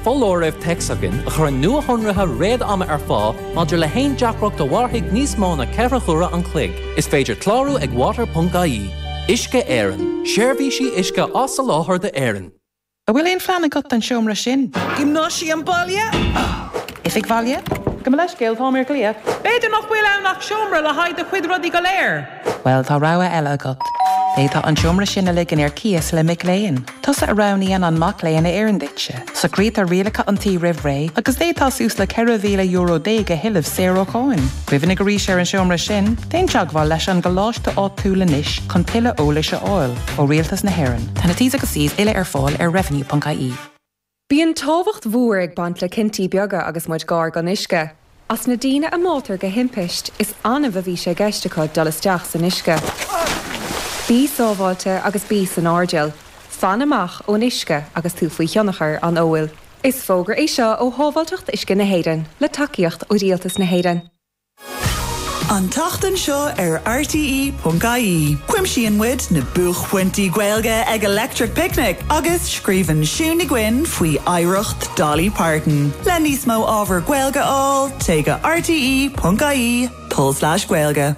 Foláireamh téacs againn a chuireann nuashonruithe réad-ama ar fáil maidir le haon deacracht a mhairfidh níos mó na ceithre huaire an chloig. Is féidir clárú ag water.ie. Uisce Éireann, Seirbhísí uisce á soláthar d'Éirinn. An bhfuil aon phlean agat don seomra sin? Giomnáisiam baile? Oifig bhaile? Gabh mo leithscéal, tá mé ar glaoch. B'fhéidir nach bhfuil ann ach seomra le haghaidh do chuid rudaí go léir. Bhuel, tá rogha eile agat. D'fhéadfá an seomra sin a ligean ar cíos le mac léinn. Tusa a roghnaíonn an mac léinn a oireann duitse. Socraítear rialacha an tí roimh ré agus d'fhéadfá suas le ceithre mhíle euro déag a thuilleamh saor ó cháin. Cuimhnigh arís ar an seomra sin. Déan teagmháil leis an gcoláiste áitiúil anois chun tuilleadh eolais a fháil ó Rialtas na hÉireann. Tá na T's agus C's uile ar fáil ar revenue.ie. Bíonn tábhacht mhór ag baint le cinntí beaga agus muid gar don uisce. As na daoine a bháitear de thimpiste, is annamh a bhí sé i gceist acu dul isteach san uisce. Bí sábháilte agus bí san airdeall. Fan amach ón uisce agus tú faoi thionchar an óil. Is fógra é seo ó Shábháilteacht Uisce na hÉireann, le tacaíocht ó Rialtas na hÉireann. An tseachtain seo ar RTÉ.ie, cuimsíonn muid na buaicphointí Gaeilge ag Electric Picnic agus scríobhann Siún Ní Dhuinn faoi oidhreacht Dolly Parton. Le níos mó ábhar Gaeilge a fháil, téigh go rte.ie, tulslais Gaeilge.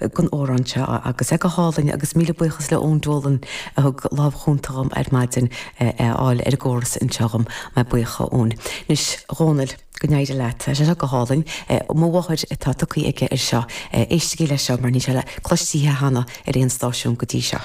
ag an amhrán seo agus é go hálainn agus míle buíochas le Eoin Dolan a thug lámh chúnta dhom ar maidin é a fháil ar an gcóras anseo dhom. Míle buíochas a Eoin. Anois Dhónaill, go n-éirí leat. Tá sé seo go hálainn. Mo mháthair atá tugtha aige ar seo. Éistigí leis seo mar níl sé cloiste cheana ar aon stáisiún go dtí seo.